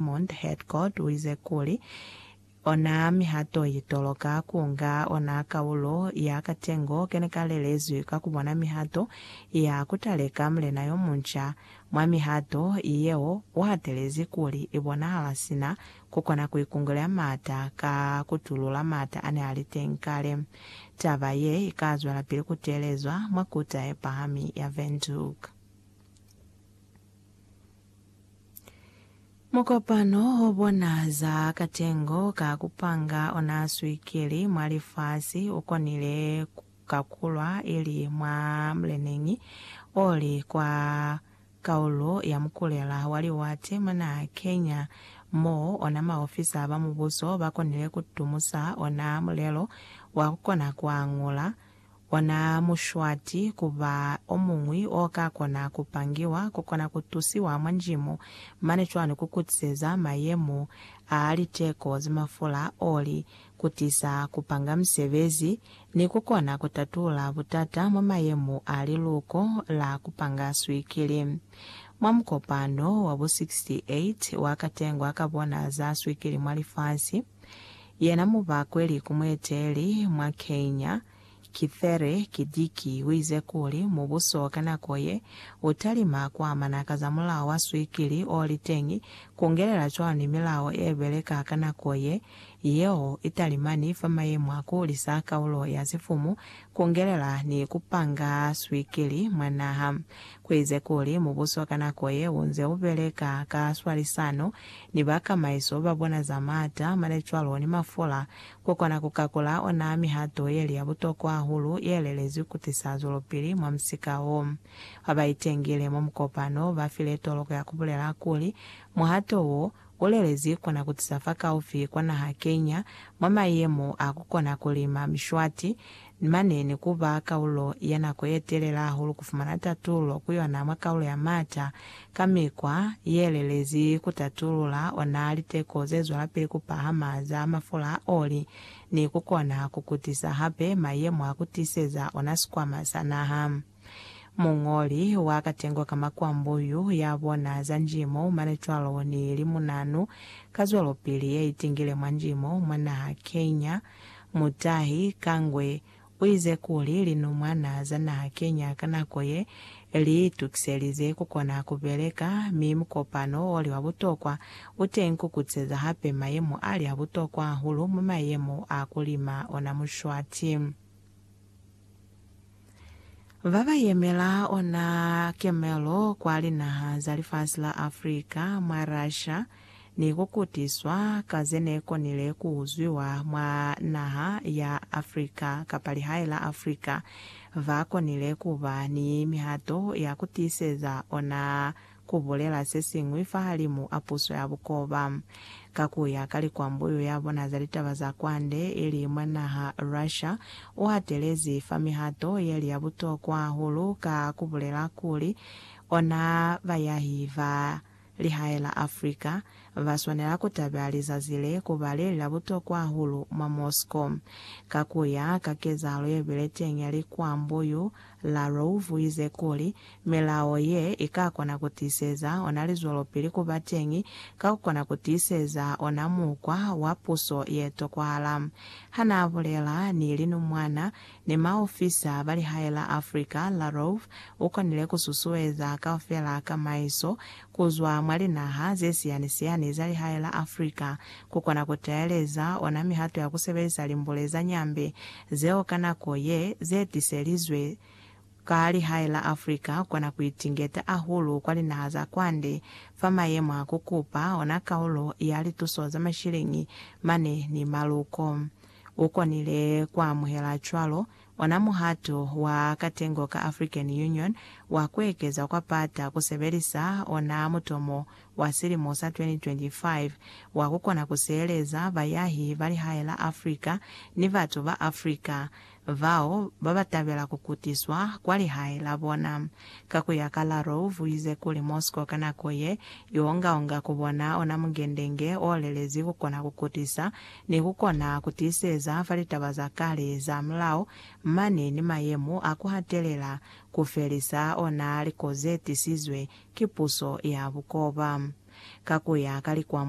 Edmund Headcoat uize kuli, Ona mihato ye toloka kunga ona kaulo ya katengo kene kalelezwi ka kubona mihato ya kutaleka mulena yomunca. Mwa mihato yeo, uhatelezi kuli ibonahala sina kukona kuikungulea maata ka kutulula maata ane ali teñi kale. Taba ye ikazwelapili kuteelezwa mwa Kuta Yepahami ya Windhoek. Mukopano o bona za katengo ka ku panga ona swikiri mwa lifasi u konile ku kakulwa ili mwa mleneñi o li kwa kaulo ya mukulela wa liwate mwa naha Kenya, mo ona maofisa ba mubuso ba konile ku tumusa ona mulelo wa ku kona ku angula Ona mushwati ku ba omuñwi o ka kona ku pangiwa, ku kona ku tusiwa mwa njimo, mane cwani ku kutiseza mayemo a liteko za mafula, oli, ku tisa ku panga misebezi, ni ku kona ku tatula butata mwa mayemo a liluko la ku panga swikili. Mwa mukopano wa bo 68 wa katengwa ka bona za swikili mwa lifasi, Yena mubakweli ku mueteli mwa Kenya, Kithure Kidiki uize kuli mubuso ka nako ye utalima kuamana ka za mulao wa swikili oliteñi kungelela cwani milao ebeleka ka nako ye, yeo italimani fa mayemo a kuhulisa kaulo ya sifumu, kungelela ni kupanga swikili mwa naha. Kuize kuli mubuso ka nako ye unze ubeleka ka swalisano ni bakamaiso babona za maata, mane cwalo ni mafula, kukona kukakula ona mihato yeli ya butokwa hahulu yelelezwi kutisa zwelopili mwa musika wo. Babaitengile mwa mukopano bafile toloko ya kubulela kuli muhato wo ulelezwi kona kutisa fakaufi kwa naha Kenya mwa mayemo a kukona kulima mishwati ni mane ni ku ba kaulo ya nako ye telela hahulu ku fumana tatulo ku yona mwa kaulo ya m'ata ka mikwa ye lelezi ku tatulula ona liteko ze zwelapili ku pahama za mafula a oli ni ku kona ku kutisa hape mayemo a ku tiseza ona sikwama sa naha. Muñoli wa katengo ka makwambo yu ya bona za njimo, manecwalo ni limunanu, kazwelopili ya itingile mwa njimo mwa naha Kenya, Mutahi Kangwe, u ize kuli linumwana za naha Kenya ka nako ye li itukiselize ku kona ku beleka mi mukopano o li wa butokwa u teñi ku kutiseza hape mayemo a li a butokwa hahulu mwa mayemo a ku lima ona Mushwati. Ba ba yemela ona kemelo kwa linaha za lifasi la Africa mwa Russia ni ku kutiswa ka ze ne konile ku uzwiwa mwa naha ya Africa kapa lihae la Africa ba konile ku ba ni mihato ya ku tiiseza ona ku bulela se siñwi fahalimu a puso ya bukoba. Ka ku ya ka likwambuyu ya bona za litaba za kwande, ili mwa naha Russia, u hatelezi fa mihato ye li ya butokwa hahulu ka ku bulela kuli, ona bayahi ba lihae la Africa ba swanela ku tabeha lizazi le ku ba le li la butokwa hahulu mwa Moscow. Ka ku ya ka kezahalo ye bile teñi ya likwambuyu, Larouff uize kuli, Milao ye ikakona kutiiseza ona lizwelopili kuba teñi ka kukona kutiiseza ona mukwa wa puso yetokwahala. Hanaabulela ni linumwana ni maofisa ba lihae la Afrika, Larouff ukonile kususueza kaufela kamaiso kuzwa mwa linaha zesiyani-siyani za lihae la Africa, kukona kutaeleza ona mihato ya kusebelisa limbule za Nyambe zeo ka nako ye, zetiselizwe ka lihae la Africa kona kuitingeta ahulu kwa linaha za kwande fa mayemo a kukupa ona kaulo ya lituso za mashiliñi mane ni maluko. Ukonile kuamuhela cwalo Ona muhato wa katengo ka African Union wa kuekeza kwa pata kusebelisa ona mutomo wa silimo sa 2025 wa kukona kusieleza bayahi ba lihae la Africa ni batu ba Africa bao babatabela kukutiswa kwa lihae la bona. Ka kuya ka Larov, uize kuli Moscow ka nako ye, iongaonga kubona ona mungendenge olelezi kukona kukutisa Ni ku kona ku tiiseza fa litaba za kale za mulao mane ni mayemo a ku hatelela ku felisa ona liko ze tisizwe ki puso ya bukoba. Ka ku ya ka likwambulo,